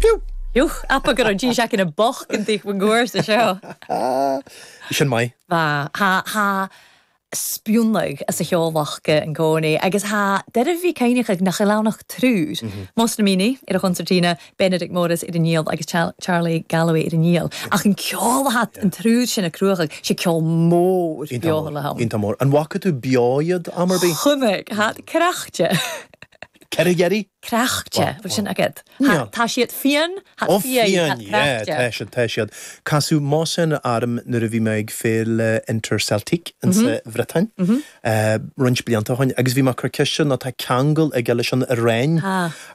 Piú! Piú! Abair go raibh dís aice na boc an taobh gcuair sa seo. Bhí sin maith. Bhí. Thá, thá spionnadh as a' cheol acu an cónaí agus thá e doirbh a bhith cuimhneachadh nach eil ann ach triúr, Mohsen Amini ar an chonsairtína, Benedict Morris ar an fhidil agus Charlie Galloway ar an fhidil. Ach an ceol a thá an triúr sin ag cruthachadh, sé ceol mór beo le ham. Iontach mór. An bhfaca tú beo iad am ar bith? Chonaic. Thá cracte. Cad é deir tú? Cracte, bhfuil sin agat? Tá siad fiáin, tá fiáin, cracte. Tá siad, tá siad. Casadh Mohsen orm nuair a bhí mé ag féile Interceltique in sa Bhriotáin, roinnt blianta ó shoin, agus bhí mé ag cur ceist air nó tá ceangal aige leis an Iaráin,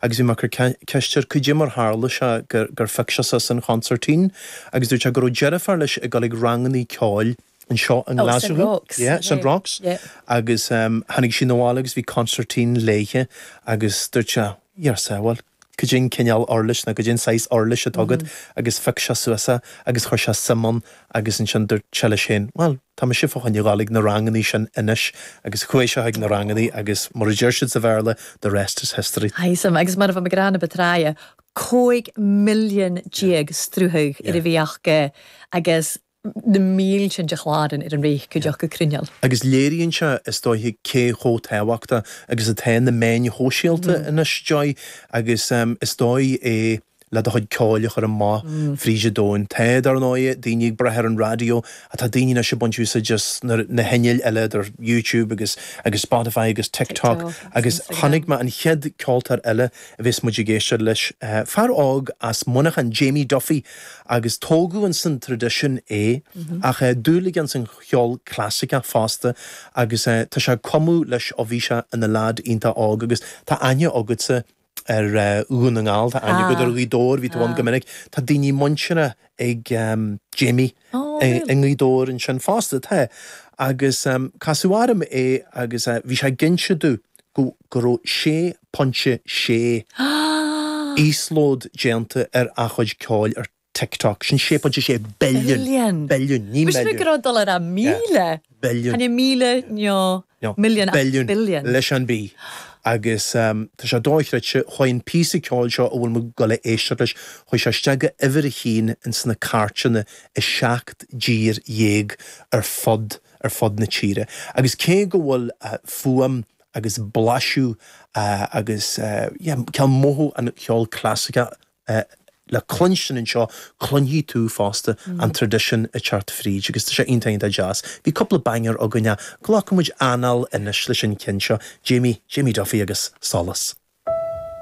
agus bhí mé ag cur ceist air cad é mar tharla sé gur gur phioc sé suas an chonsairtín, agus dúirt sé go raibh deirfiúr leis ag dul ag rangannaí ceoil, anseo i nGlaschú, yeah, St Roch's, agus tháinig sí 'na bhaile agus bhí consairtín léithe agus dúirt sé, Dia ár sábháil, cad é an cineál uirlis nó cad é an saghas uirlis atá agat agus phioc sé suas é agus chuir sé suim ann agus ansin dúirt sé leis féin, bhuel, tá mise fá choinne dhul ag na rangannaí sin anois agus chuaigh sé chuig na rangannaí agus mar a deir siad sa Bhéarla, the rest is history. Aye, sea, agus mar a bha mi ag rádh na bu tráithe, 15 milliún sruthadh air a bhith aca agus, na mílte de chláran ar an bhféith go dtiocfadh cruinneil. Agus léiríonn sé, is dóiche, cé chomh tábhachtach agus atá na meáin shóisialta anois, Joy, agus is dóigh é le do chuid ceoil a chur amach fríd an domhain. Tá, dar ndóighe, daoine ag brath ar an raidió ach tá daoine anois ag baint úsáid as na hinnill eile idir YouTube agus agus Spotify agus TikTok agus chonaic mé an chéad ceoltóir eile a bhéas muid ag éisteacht leis, fear óg as Muineachán, Jamie Duffy. agus tógadh in san traidisiún é, ach eh dúil aige in san cheol clasaiceach fosta agus eh tá sé ag cumadh leis ó bhí sé ina leaid iontach óg agus tá aithne agatsa ar eh Dhún na nGall, tá aithne agat ar Ghaoth Dobhair, bhí tú ann go minic, tá daoine muinteartha ag ehm Jamie i nGaoth Dobhair ansin fosta, tá. Agus ehm casadh orm é agus eh bhí sé ag inse domh, go go raibh 6.6 íoslód déanta ar a chuid ceoil ar TikTok. Sin 6.6 billiún, billiún, ní milliún, billiún leis an B, agus tá sé dochreidte, chuaigh an píosa ceoil seo a bhfuil muid ag dul a éisteacht leis, chuaigh sé isteach go uimhir a haon ins na cairteanna i seacht dtír dhéag ar fud na. ar fud na tíre agus cé go bhfuil fuaim agus blaiseadh agus, yeah, cineál mothú an cheoil chlasaiceach le cluinstin anseo, cluinfidh tú fosta an traidisiún ag teacht fríd agus tá sé iontach, iontach deas. Bhí cúpla banger againn, glacfaidh muid anáil anois leis an cheann seo, Jamie, Jamie Duffy agus Solas.